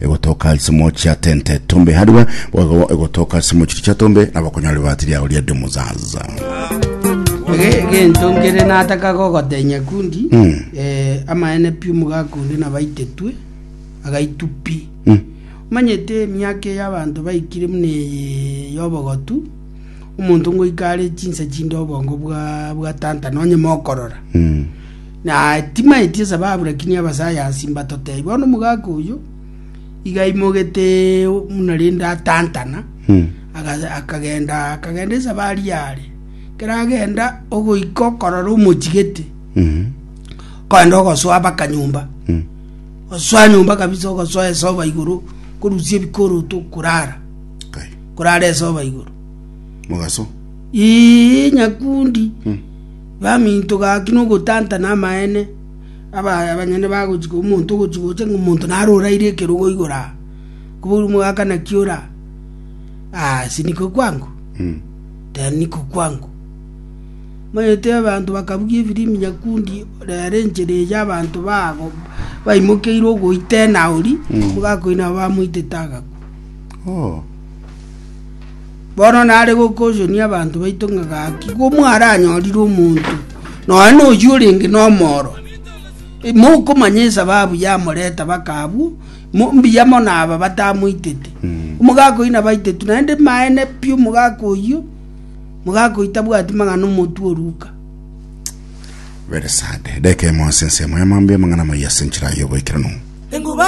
egotoka asemo chia tente tombe hariwe boigo egotoka asemo chiri chia tombe na bakonyora ribati riago ria demuzaza egento nkere nataka gogotenya kundi mm. eh, amaene pi omogakundi nabaitetwe agaitu pi mm. manyete emiaka eyo abanto baikire muna eye yobogotu omonto ngoikare chinsa chinde obongo bwa, bwa tanta nonye mokorora mm. Na timaeti esababu lakini abasayansi mbatotebia bono omogaka oyio iga aimogete buna rende atantana aga- akagenda akagenda esabari yare keragenda ogoika okorora omochigete kogenda ogosoa baka nyomba osoa nyomba kabisa ogosoa esoba igoro korusia ebikoroto korara Kai. korara esoba igoro mogaso Ii, nyakundi Baminto gaki nogotantana amaene, abaya abanyene bagochika omonto ogochia gocha ng'a omonto nare oraire ekerogo igoro aa. Kobourwa omogaka naki ore aa? Aase niko kwango? Tee niko kwango. Omanyete abanto bakabugia efirimbi nyakundi rero enchera eria abanto bago baimokeire ogoitena oria, omogaka oria nabo bamoitete agakwa. Bono nare gokochonia abanto baito ng'a gaki komwaranyorire omonto nonya noyio orenge nomoro, mokomanya esababu yamoreta baka abwo, mo- mbuya mono aba batamoitete. Omogaka oyio nabaitetwe, naende maene pi omogaka oyio, omogaka oyio tabwati mang'ana omotu oruka. Very sad. Edeka emo ase ensemo ya mambia amang'ana amaya ase enchera y'oboikeranu.